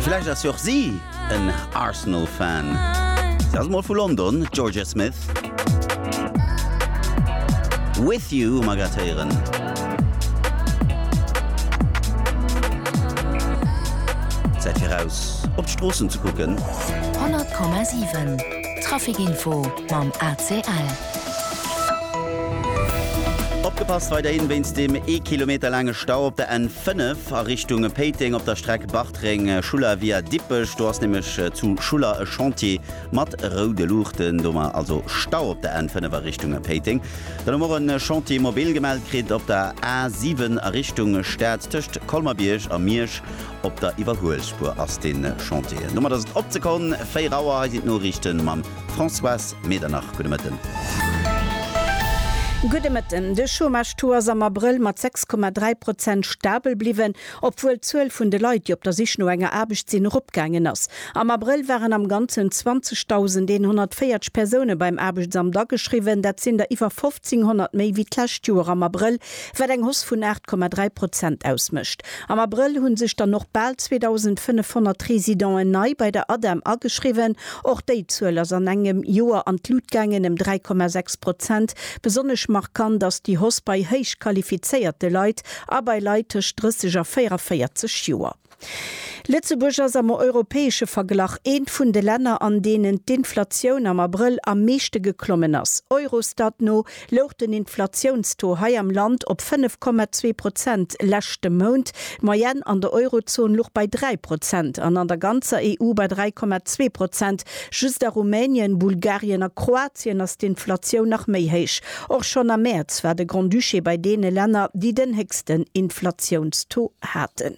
Vläicht ass jo och si en Arsenal-Fan. Si ass mol vu London, d'Jorja Smith. With You hu mer grad héieren. Zäit fir raus op d'Stroossen ze kucken. 100,7 Trafic-Info mam ACL. Opgepasst weiderhin wéinst dem ee Kilometer laange Stau op der N. 5 a Richtung Péiteng op der Streck Bartreng, Schuller via Dippech. Do ass nämlech zu Schuller e Chantier mat roude Luuchten. Domat also Stau op der N5 a Richtung Péiteng. Dann hu mer och e Chantier mobil gemellt kritt op der A7 a Richtung Stad. Tëscht Colmer-Bierg a Miersch op der Iwwerhuelspuer ass dee Chantier. Domat ass et op d'Sekonn 4 Auer. Hei sinn d'Noriichte mam. Françoise Medernach, gudde Mëtten. Gudde Mëtten. De Chômage-Taux ass am Abrëll mat 6,3 Prozent stabel bliwwen, obwuel d'Zuel vun de Leit, déi op der Sich no enger Aarbecht sinn, eropgaangen ass. Am Abrëll waren am Ganzen 20.140 Persoune beim Aarbechtsamt ageschriwwen, dat sinn der iwwer 1.500 méi wéi d'lescht Joer am Abrëll, wat eng Hausse vun 8,3 Prozent ausmécht. Am Abrëll hu sech dann och bal 2.500 Residenten nei bei der ADEM ageschriwwen. Och déi Zuel ass an engem Joer an d'Lut gaangen, ëm 3,6 Prozent. Besonnesch markant ass déi Hausse bei héich qualifizéierte Leit a bei Leit tëscht 30 a 44 Joer. Lëtzebuerg ass am europäesche Verglach eent vun de Länner, an deenen d'Inflatioun am Abrëll am meeschte geklommen ass. Eurostat no louch den Inflatiounstaux hei am Land op 5,2 Prozent leschte Mount. D'Moyenne an der Eurozon luch bei 3 Prozent an an der ganzer EU bei 3,2 Prozent. Just a Rumänien, Bulgarien a Kroatien ass d'Inflatioun nach méi héich. Och schonn am Mäerz war de Grand-Duché bei deene Länner, déi den héchsten Inflatiounstaux haten.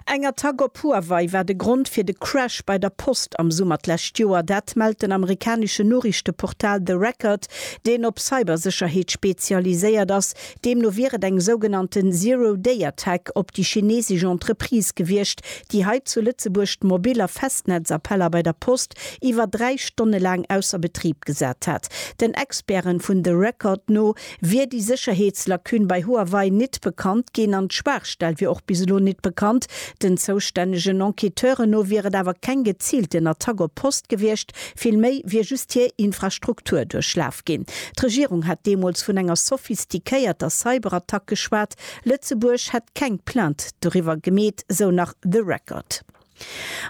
Eng Attack op Huawei war de Grond fir de Crash bei der Post am Summer d'lescht Joer. Dat mellt den amerikaneschen Noriichteportal The Record, deen op Cybersécherheet spezialiséiert ass. Deemno wier et eng sougenannte Zero-Day-Attack op déi chinesesch Entreprise gewiescht, déi hei zu Lëtzebuerg d'Mobil a Festnetzappeller bei der Post iwwer dräi Stonne laang ausser Betrib gesat hat. Den Experten vun The Record no wier déi Sécherheetslacune bei Huawei nit bekannt ginn an d'Schwaachstell wier och bis elo nit bekannt. Den zoustännegen Enquêteure no wier et awer keng geziilten Attack op Post gewiescht, villméi wier just hir Infrastruktur duerchlaf ginn. D'Regierung hat deemools vun enger sophistiquéierter Cyberattack geschwat. Lëtzebuerg hätt keng Plainte doriwwer gemeet, sou nach The Record.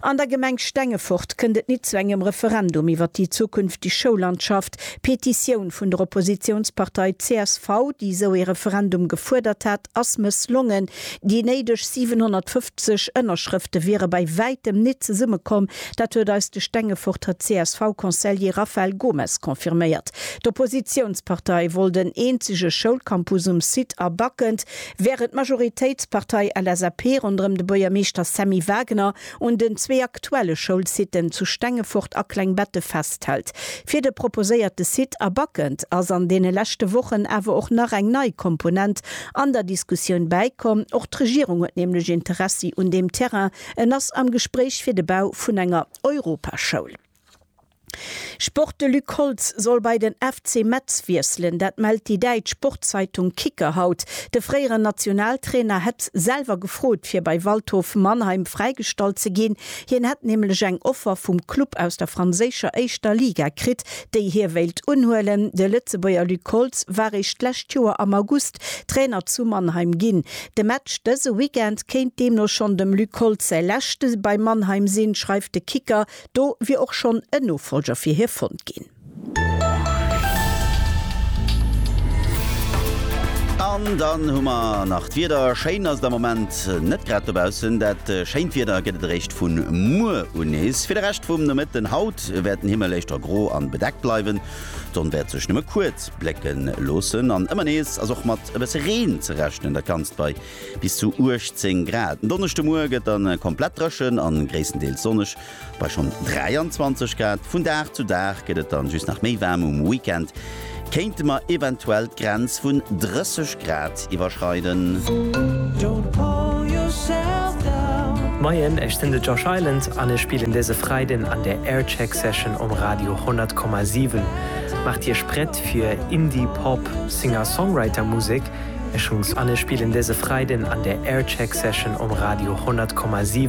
An der Gemeng Stengefort kënnt et nit zu engem Referendum iwwer déi zukünftig Schoullandschaft. D'Petitioun vun der Oppositiounspartei csv, déi esou ee Referendum gefuerdert hat, ass mësslongen. Déi néideg 750 Ënnerschrëfte wiere bei wäitem nit zesummekomm. Dat huet eis de Stengeforter CSV-Conseiller Raphael Gomes confirméiert. D'Oppositiounspartei wollt en eenzege Schoulcampus um Site a Backend. Wärend d'Majoritéitspartei LSAP ronderëm de Buergermeeschter Sammy Wagner un den zwee aktuelle Schoulsitten zu Stengefort a Klengbette festhält, fir de proposéierte Site a Backend ass an deene leschte Wochen awer och nach eng nei Komponent an der Diskussioun bäikomm. Och d'Regierung huet nämlech Interessi un deem Terrain, en ass am Gespréich fir de Bau vun enger Europaschoul. Sport De Luc Holtz soll bei den FC Metz wiesselen, dat mellt déi däitsch Sportzeitung Kicker haut. De fréieren Nationaltrainer hätt selwer gefrot fir bei Waldhof Mannheim fräigestallt ze ginn. Hien hätt nämlech eng Offer vum Club aus der franséischer éischter Liga kritt, déi hie wéilt unhuelen. De Lëtzebuerger Luc Holtz war eréischt d'lescht Joer am August Trainer zu Mannheim ginn. De Match dëse Weekend kéint deemno schonn dem Luc Holtz säi leschte bei Mannheim sinn, schreift de Kicker Do wier och schonn en Nofolger fir hie fonnt ginn. An dann hu mer nach d'Wieder. Schéin ass et am Moment net grad dobaussen. Dat schéint Wieder gëtt et eréischt vu muer un nees. Fir de Rescht vum Nomëtten haut wäert den Himmel éischter gro an bedeckt bleiwen. D'Sonn wäert sech nëmme kuerz blécken loossen an ëmmer nees ass och mat e bësse Reen ze rechnen. Dat Ganzt bei Bis zu 18 Grad. En Donneschdemoie gëtt dann komplett dréchen a gréisstendeels sonneg bei schonn 23 Grad. Vun Dag zu Dag gëtt et dann just nach méi waarm. Um Weekend kéinte mer eventuell d'Grenz vun 30 Grad iwwerschreiden. Moien, ech sinn de Josh Island an ech spillen dëse Freiden an der Aircheck Session um Radio 100,7. Maacht Iech prett fir Indie-Pop Singer-Songwriter-Musek Ech hunns an ech spillen dese Freiden an der Aircheck Session um Radio 100,7.